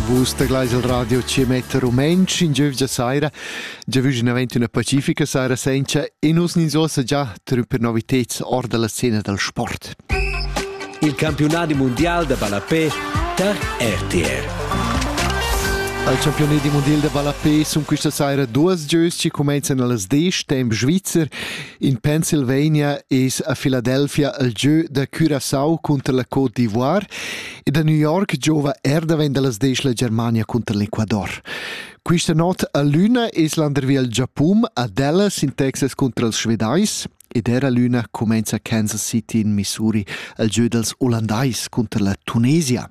Vus teglais il radio ci mette rumenc in giövgia saira. Giavüginavent una pacifica saira senza e nus nin sosa già trum per novitets or dalla scena dal sport. Il campionati mondial da ballapé tar RTR. Al campionati mondial da ballapé sun questa saira duas gieus che comenzan allas 10 temp Svizzer In Pennsylvania es a Philadelphia il gieu da Curaçao cunter la Côte d'Ivoire ed a New York giova er davent da las desch la Germania cunter l'Ecuador. Quista not a l'üna es landervi al Giapun, a Dallas in Texas cunter els Svedais ed era l'üna cumenza Kansas City in Missouri al gieu dels Olandais cunter la Tunesia.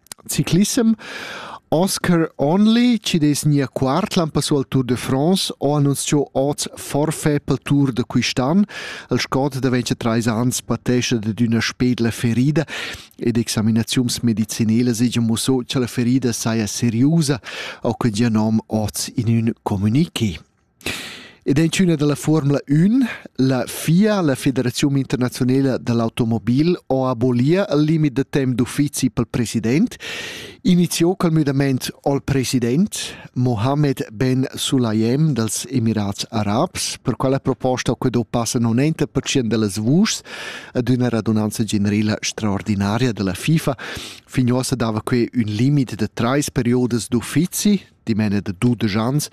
Ciclissem Oscar Only chi dess gnir quart l'an passà al Tour de France ho annunzchà hoz forfait pel Tour da quist'an. Il scot daventscha trais ans patescha dad üna spedla ferida ed examinaziuns medizinelas hegia muossà cha la ferida saja seriusa, ho que gia nom hoz in ün comuniqué. Ed en tschüna da la fuormula ün, la FIA, la Federaziun internaziunela da l'automobil, ho abolia il limit da temp d'uffizi pel president, iniziò col müdamaint al president Mohammed Ben Sulayem dals Emirats Arabs. Per quella proposta ho que do passa 90% da las vuschs ad üna radunanza generela straordinaria da la FIFA. Fin uossa dava que ün limit da trais periodas d'uffizi dimena da dudesch ans,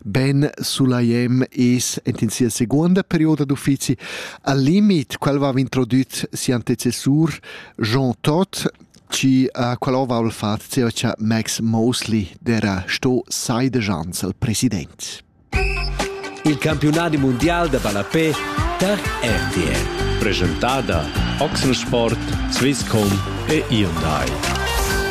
Ben Sulajem es ent in sia seguonda perioda d'uffizi al limit quel va introdüt si antecessur Jean Todt ci uh, qual ova al fat zeva cha Max Mosley dera sto sai de Jans al president. Il campionati mondial de ballapé per RTL. Presentada Oxensport, Swisscom e Hyundai.